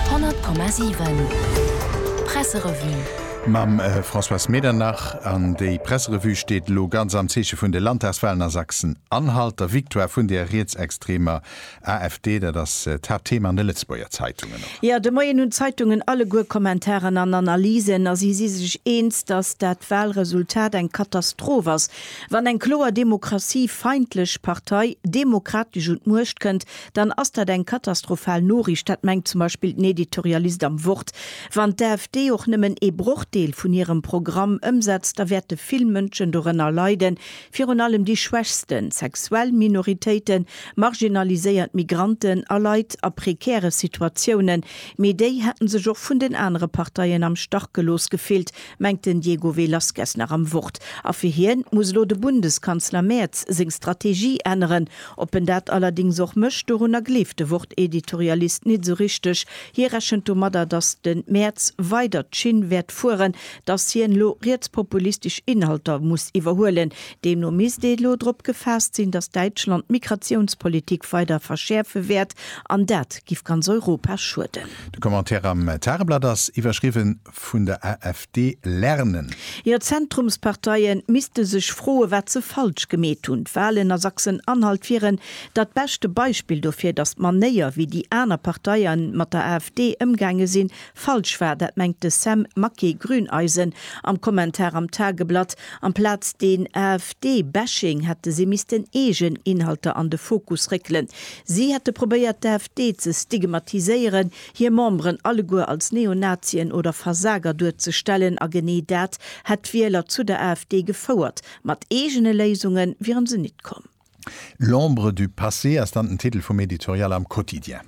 100,7 Presserevue. Mam Françoise Medernach. An déi Presserevue steet elo ganz am Zeeche vun de Landtagswalen a Sachsen-Anhalt, der Victoire vun der rietsextremer AfD. Dat ass d'Haaptthema an de Lëtzebuerger Zeitungen och. Jo, de Moien hunn d'Zeitungen alleguer Kommentaren an Analysen a si si sech eens, datt dat Walresultat eng Katastroph ass. Wann eng kloer demokratiefeindlech Partei demokratesch un d'Muecht kënnt, dann ass dat eng katastrophal Noriicht, dat mengt zum Beispill den Editorialist am Wort. Wann d'AfD och nëmmen ee Brochdeel vun hirem Programm ëmsetzt, da wäerte vill Mënschen dorënner leiden, virun allem déi Schwächsten, sexuell Minoritéiten, marginaliséiert Migranten a Leit a prekäre Situatiounen. Mee déi hätten sech och vun den anere Parteien am Stach gelooss gefillt, mengt den Diego Velazquez nach am Wort. A fir hien muss elo de Bundeskanzler Merz seng Strategie änneren, Op en dat allerdings och mécht, dorunner gleeft de Wort-Editorialist nit esou richteg. Hie rechent domadder, datt de Maerz weider d'Schinn wäert fueren, datt hien elo rietspopulistesch Inhalter muss iwwerhuelen. Deemno misst ee elo drop gefaasst sinn, datt Däitschland d'Migratiounspolitik weider verschäerfe wäert, an dat giff ganz Europa schueden. De Commentaire am Tageblatt ass iwwerschriwwen. vun der AfD lernen? Jo, d'Zentrumsparteie misste sech froe wat se falsch gemeet hunn. D'Walen a Sachsen-Anhalt wieren dat beschte Beispill dofir, datt d'Manéier wéi déi aner Parteie mat der AfD ëmgaange sinn, falsch war. Dat mengt de Sam Maquet, Grüneisen, am Kommentar am Tageblatt. Amplaz deen AfD-Bashing hätte si missten eegen Inhalter an de Fokus réckelen. Si hätte probéiert d'AfD ze stigmatiséieren, hir Memberen alleguer als Neonazien oder Versager duerzestellen, a genee dat hätt d'Wieler zu der AfD gefouert. Mat eegene Léisunge wieren se nit komm. L'ombre du passé ass dann den Titel vum Editorial am Quotidien.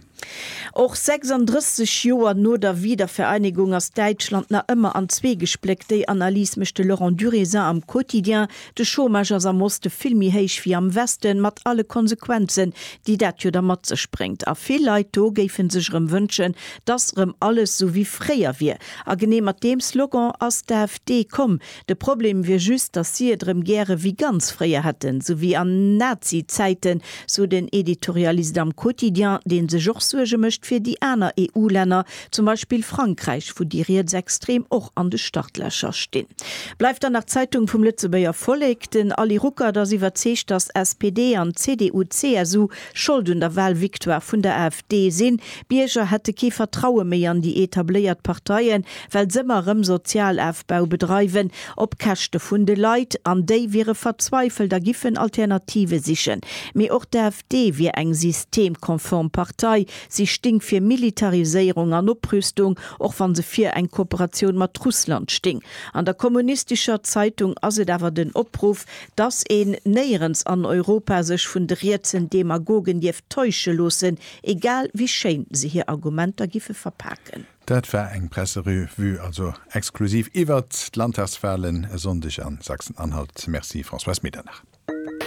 Och 36 Joer no der Wiedervereinegung ass Däitschland nach ëmmer an zwee gespléckt. Déi Analys mécht de Laurent Durézin am Quotidien, De Chômage ass am Oste vill méi héich wéi am Westen, mat alle Konsequenzen, déi dat jo da mat sech bréngt. A vill Leit do géife sech erëm wënschen, dass erëm alles esou wéi fréier wier. A genee mat deem Slogan ass d'AfD komm. De Problem wier just, dass si et erëm gäre wéi ganz fréier hätten, esou wéi an Nazi-Zäiten, sou den Editorialist am Quotidien, dee sech och Suerge mécht fir déi aner EU-Länner, zum Beispill Frankräich, wou déi Rietsextrem och an de Startlächer stinn. Bleift dann nach d'Zeitung vum Lëtzebuerger Vollek. Den Ali Ruckert ass iwwerzeegt, datt SPD an CDU-CSU Schold un der Wahlvictoire vun der AfD sinn. D'Bierger hätte kee Vertraue méi an déi etabléiert Parteien, well s'ëmmer erëm Sozialafbau bedreiwen, op Käschte vun de Leit. An déi wiere verzweifelt a giffen Alternative sichen. Mee och d'AfD wier eng systemkonform Partei, Si sting fir Militariséierung an Oprüstung, och wann se vir eng Kooperatioun mat Russland sting. An der kommunistischer Zeitung ass et awer den Opruff, dass een néierens an Europa sech vun de rietsen Demagogen dierf täusche loossen, egal wéi schéin se hir Argumenter giffe verpaken. Dat war eng Presserevue also exklusiv iwwert d'Landtagswahlen e Sonndeg a Sachsen-Anhalt. Merci Françoise Medernach.